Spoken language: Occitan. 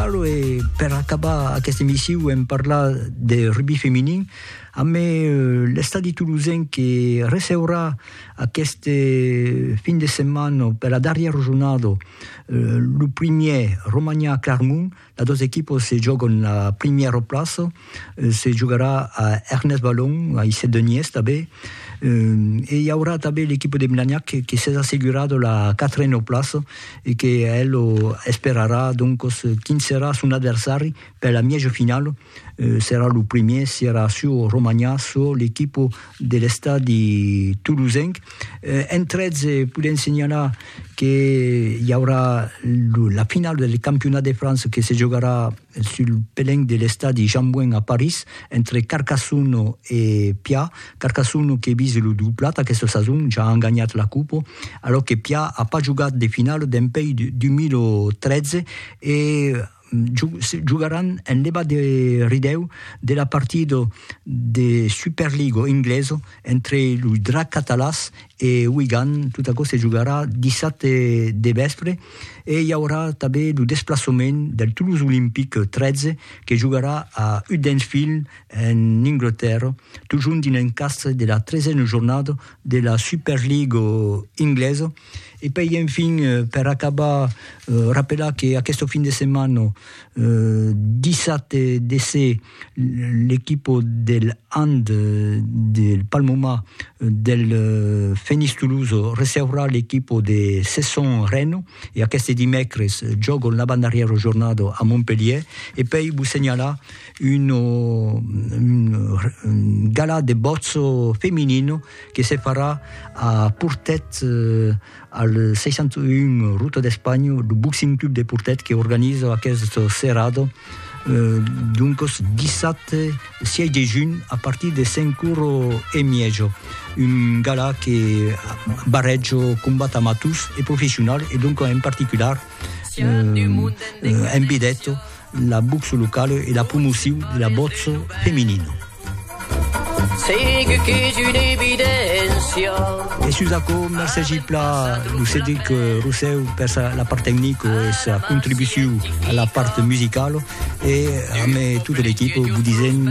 Alo e per acabar aquesta emissiu en parlar de rugby feminin amb l'estadi tolosenc que receurà aquest fin de setmana per la darrièra jornada lo primièr Romania Clarmont, las dos equipas se jògan la primièra plaça. se jogarà a Ernest Balon, a Isset de Nies tanben, e i aurà tanben l'equipa de Blagnac que s'es assegurada la quatrena plaça e que el esperarà doncos quin serà son adversari per la mièja finala, serà lo primièr, serà çò Romanhà, çò l'equipa de l'estadi tolosenc. Entretz podèm senhalar que i aurà la finala del campionat de França que se jogarà sul pelenc de l'estadi Jean-Bouin a París, entre Carcassonne e Pià, Carcassonne que vise lo doblat aquesta sason, ja an ganhat la copa, alòc que Pià a pas jogat de finala dempèi 2013 e jogaràn en levat de ridèu de la partida de Superliga englesa Entre los Dracs Catalàs e Wigan, tot aquò se jogarà dissabte de vèspre e i aurà tanben lo desplaçament del Toulouse Olympic 13 que jogarà a Huddersfield en Anglatèrra, totjorn dins l'encastre de la tresena jornada de la Super League inglesa. E puèi enfin, per acabar, rapelar que aquesta fin de setmana, dissabte de se, l'equipo del hand del Palmoma del Fenix Toulouse receurà l'equipo de Cesson Reno e aqueste dimècres jògon l'avantdarrièra jornada a Montpelhièr e pèi vos senhalar un gala de bòtz feminino que se farà a Portet Al 61 Ruta d'Espanha, lo Boxing Club de Portet que organiza aquest serrado, doncos dissabte 6 de junh a partir de 5 oro e miejo, un gala que barrejo combat amators e professional e doncos en particular envidèto La boxe locale e la promocion de la boxe feminina. Segue qu'es una evidéncia. E sus aquò, mercés Gipla, lo Cedric Rosseu per sa, la part tecnic e sa contribucion a la part musicala e a me tota l'equipa, vous disent